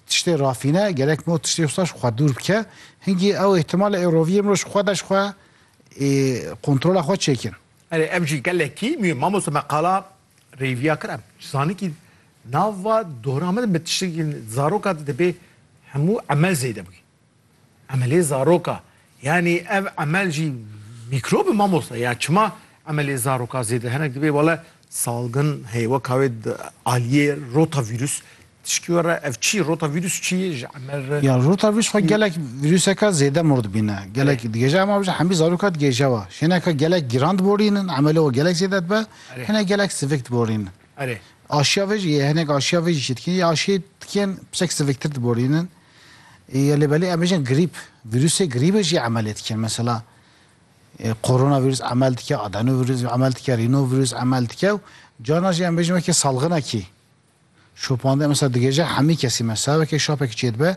tiştê rafîne gerek no tiştê wisa ji xwe dûr bike. Hingî ew îhtimal e ê roviyê mirov ji xwe de ji xwe ê kontrola xwe çêkin. Erê ev jî gelekî mî mamoste me qala rêviya kir em ji zanikî nava dora me de bi tiştekî zaroka de dibê hemû emel zêde bikî. Emelê zaroka yanî ev emel jî mîkrob e mamosta ya çima emelê zaroka zêde hinek dibê wele salgin heye weka wê aliyê rotavîrus tişkî we re ev çi rotavîrus çi ye ji emel re Ya rotavîrus xwe gelek vîruseka zêde mor dibîne gelek digêje ema bijî hemî zaroka digêje we şêneka gelek giran diborînin emelê we gelek zêde dibe hinek gelek sivik diborînin. Erê. Aşiya vê jî yê hinek aşiya vê jî çêdikî ya aşiyê tikên pisek siviktir diborînin. Ya lê belê em bêjin grîp, vîrusê grîbê jî emelê dikin. Mesela koronavîrus emel dike, adenovîrus emel dike, rînovîrus emel dike û carna jî em bêjin wekî salxinekî şopandin mesela digêje hemî kesî mesela wekî şapekî çê dibe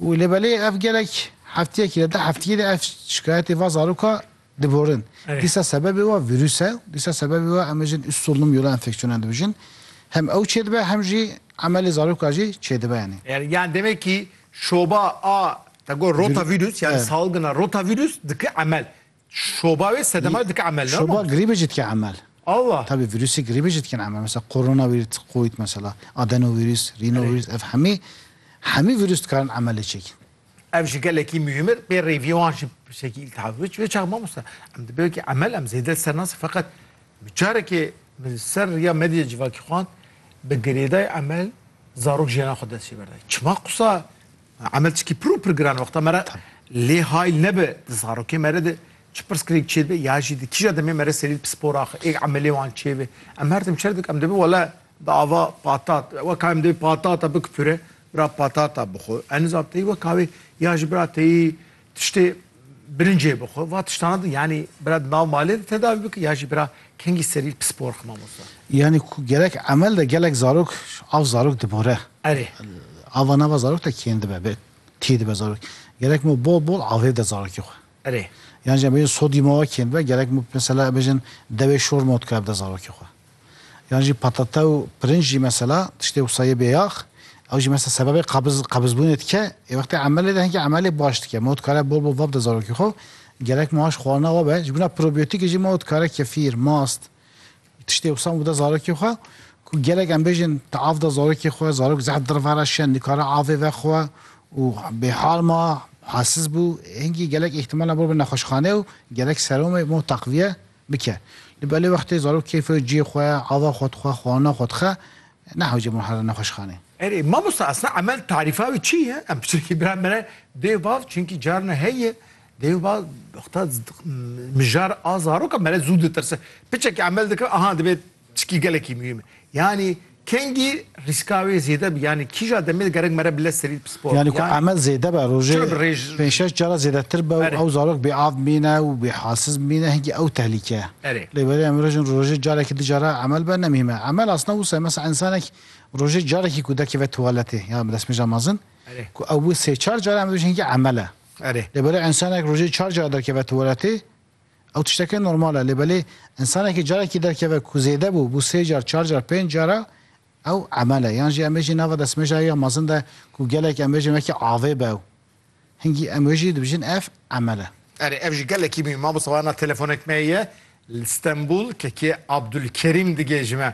û lê belê ev gelek heftiyekî de heftiyê de ev şikayetê va zaroka Diborin. Dîsa sebebê we vîrûs e. Dîsa sebebê we em ê jin üst solunum yola enfeksiyonan dibijin. Hem ew çêdibe hem jî emelê zaroka jî çêdibe yanî. Yani demek ki şoba a te got rotavîrûs yani salgina rotavîrûs dike emel. Şoba wê sedema wê dike emel. Şoba grîbê jî dike emel. Allah. Tabî vîrûsê grîbê jî dikin emel. Mesela koronavîrûs, covid mesela, adenovîrûs, rînovîrûs ev hemî hemî vîrûs dikarin emelê çêkin. Ev ji gelekî muhîm ir pê rêvîwan jî bi şekî îltiha bû. Wê çax mamosta em di bêwekî emel em zêde li ser nasî feqet min carekê min li ser riya medyê civakî xwend bi girêdayê emel zarok jiyana xwe dest jê berdayî. Çima qisa emel çikî pir û pir giran wexta me re lê hayl nebe di zarokê me re de çi pirsgirêk çê dibe ya jî di kîja demê me re serî li pispor axe ê emelê wan çê be. Em her tim çer dikin em dibin wele bi ava patat weka em dê patata bikipure. Bira patata bixwe, eniza teyî weka wê ya ji bira teyî tiştê birincê bixwe. Va tiştana di yanî bira di nav malê de tedavî bike ya jî bira kengî serî pispor xwe mamosta. Yanî ku gerek emel de gelek zarok av zarok dibore. Erê. Ava nava zarok de kêm dibe be tî dibe zarok. Gerek ma bol bol avê de zarokê xwe. Erê. Yan jî em bêjin sodyuma wa kêm dibe gerek ma mesela em bêjin dewê şor ma dikare bide zarokê xwe. Yan jî patate û pirinc jî mesela tiştê wisa yê bêyax ew jî mesela sebebê qabiz qabizbûnê dike. Ê wextê emelê de hinkî emelê baş dike. Ma dikare bol bol vabde zarokê xwe gerek maş xwarina we be. Ji bo na probiyotîkê jî ma dikare kefîr, mast tiştê wisa û bide zarokê xwe ku gelek em bêjin tu av de zarokê xwe, zarok zehf dir ve re şiya nikare avê vexwe û bêhal ma, halsiz bû. Hinkî gelek îhtimal e bol be nexweşxanê û gerek seromê ma teqviye. Bike. Li belê wextê zarok keyfê û ciyê xwe, ava xwe dixwe, xwana xwe dixe, nehewce bon here nexweşxanê. Erê, mamosta esna emel tarîfa wê çi ye? Em pirsîn kî bira me re dê vav çinkî carna heye dê va wexta mijar a zaroka me re zû ditirse. Piçekî emel dike aha divê Çikî gelekî muhîm e. Yanî kengî rîska wê zêde bi yanî kîja demê gerek mere bile serî di pisporê. Yanî ku emel zêde be rojê pênc şeş cara zêdetir be û ew zarok bêav bimîne û bêhasiz bimîne hingî ew tehlîke ye. Lê berê em mirov jin rojê carekî di cara emel be ne muhîm e. Emel asna wisa ye mesela însanek rojê carekî ku derkeve tuwaletê ya bi destmêja mezin ku ew bi sê çar cara em dibêjin hingî emel e. Lê berê însanek rojê çar cara derkeve tuwaletê Ew tişteke normal e lê belê însanekî carekî derkeve ku zêde bû, bû sê car, çar car, pênc car e, ew emel e. Yan jî em bêjî nava destmejayê ya mezin de ku gelek em bêjin wekî avê be ew. Hingî em wê jî dibijin ev emel e. Erê ev jî gelekî mî. Mamosta wana telefonek me ye li Stenbul, kekê Abdulkerîm digê ji me.